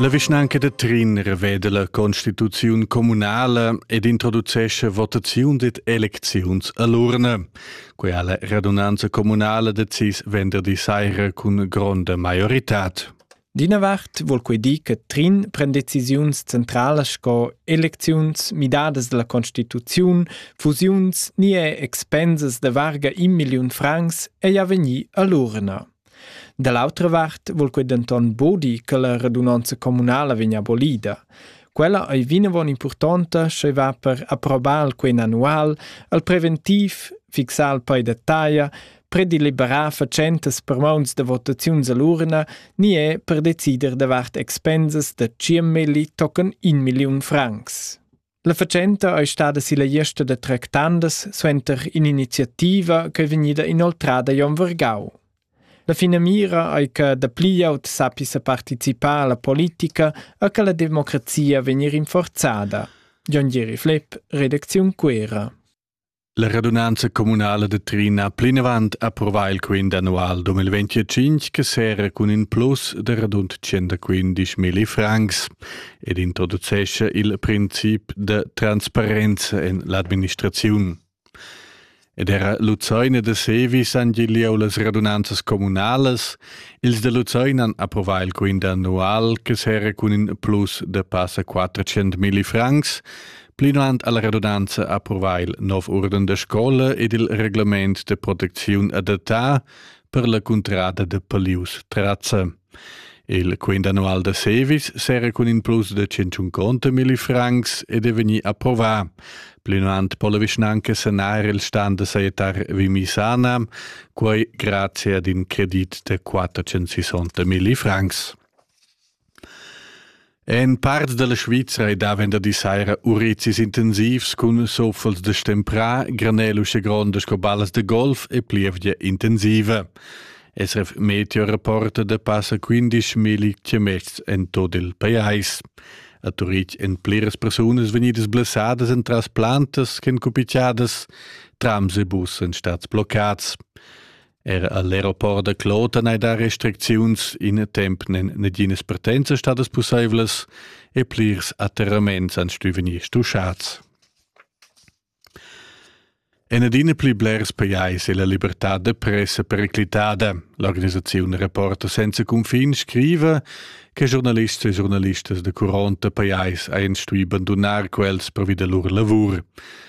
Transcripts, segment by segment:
La vischnanca da Trin reveda la constituziun communala ed introducesce votaziun ed elecziuns a l'urna. Quella la radunanza communala decis venderdi saira cun gronda maioritad. D'ina vart vul quei dir che Trin pren decisiuns centralas sco elecziuns, midadas dalla constituziun, fusiuns ni er expensas da varga in milliun francs ei a vegnir all'urna. Da l'autra vart vul quei denton bodi che la radunanza communala vegn abolida. Quella ei vinavon impurtonta sche va per approbar quei annual al preventiv, fixar il pei da taglia, predeliberà fatschentas per mauns da votaziuns a l'urna ni è per decider davart expensas da 100 milli tocan 1 milliun francs. La fatschenta è stada silla gliesta da tractandas suenter in'iniziativa che è vegnida inoltrada Jon Vergau. La finamira è che dapli glieud sappia partecipare alla politica e che la democrazia vegni rinforzada. Jon Gieri Flepp, Redaktion Quera. La radunanza communala de Trin ha plinavant approvà il quint annual 2025 che serra cun in plus de radund 115.000 francs ed introducescha il princip de transparenza en l'administraziun. Ed era Luzoina de Sevis han gigliau las radunanzas communalas. Ils de Luzoina han approvà il quint annual che serra cun in plus de passa 400.000 francs Plinant alla redundanza approvà il nov urden da scola ed il reglement de protecziun adattà per la cuntrada de Palius Trazza. Il quint annual da Sevis s'era cun in plus de 150 milli francs ed è vegni approvà. Plinant po la vischnanca sanar il stand da saietar Vimisana, quai grazie ad in credit de 460 milli francs. En parts dalla Svizra ei da venderdi saira urizis intensivs cun soffels da stemprà, granel usche gronda sco ballas da golf e plievgia intensiva. SRF Meteo rapporta da passa 15.000 chiamets en tot il pajais. A Turitg èn pliras persunas vegnidas blessadas entras plantas ch'en cupicciadas, trams e bus èn stats bloccats. Er all'aeroport da Kloten hai dà restricziuns, in temp nen naginas partenza stadas pussaivlas e plirs atterraments han stuì vegnir stuschats. En adina pli blers pajais è la libertad da pressa periclitada. L'organisaziun Reporter senza cunfin scriva che giornalists e giornalistas da curonta pajais han stuì bandunar quels pervi da lur lavur.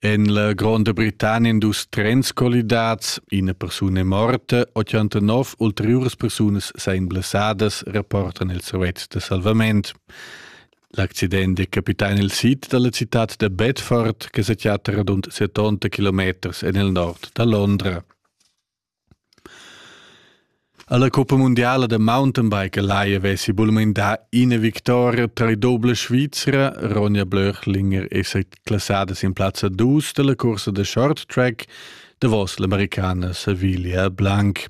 En la Gronda Britannia han dus trens collidats, ina persuna è morta, 89 ulteriuras persunas seien blessadas, rapportan il servetsch da salvament. L'accident è capità nel sid dalla città da Bedford, che sa chatta radund 70 km en il nord da Londra. Alla coppa mundiala da mountainbike lai havessi bulmain dà ina victoria tra i dobla Svizra. Ronja Blöchlinger è sa classada sin plazza dus dalla cursa da short track davos l'americana Savilia Blanc.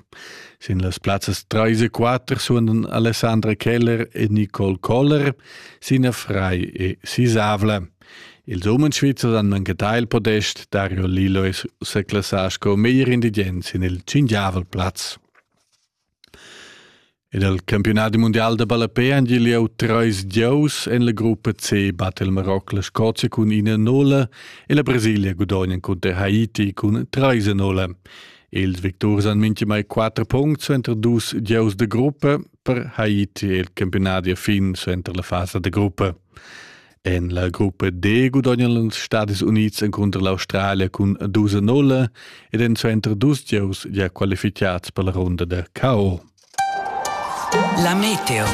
Sin las plazzas 3 e 4 suonan Alessandra Keller e Nicole Koller, Sina Frei e Sisavla. Ils umens svizzers han engattà il podest Dario Lillo e seclassà sco meglier indigent sin il tschingiavel plaz. Ed al campiunat mundial da ballapé han gieu treis gieus en la gruppa C batte il Maroc la Scozia cun ina nola e la Brasilia gudognan cunter Haiti cun treis nola. Ils victurs han minchimai quattro puncts suenter dus gieus de gruppa per Haiti e il campiunat a fin suenter la fasa de gruppa. En la gruppa D gudognan els Stadis Unids encunter l'Australia cun dus a nulla ed èn suenter dus gieus gia qualificads per la runda da KO. La Meteo.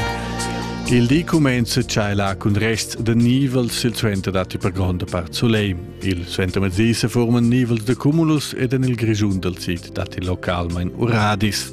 Il di cumenza tschailar cun rests da nivels silsuenter datti per gronda part soleil. Il suentermezdi se forman nivels da cumulus ed en il Grischun dal sid datti localmain uradis.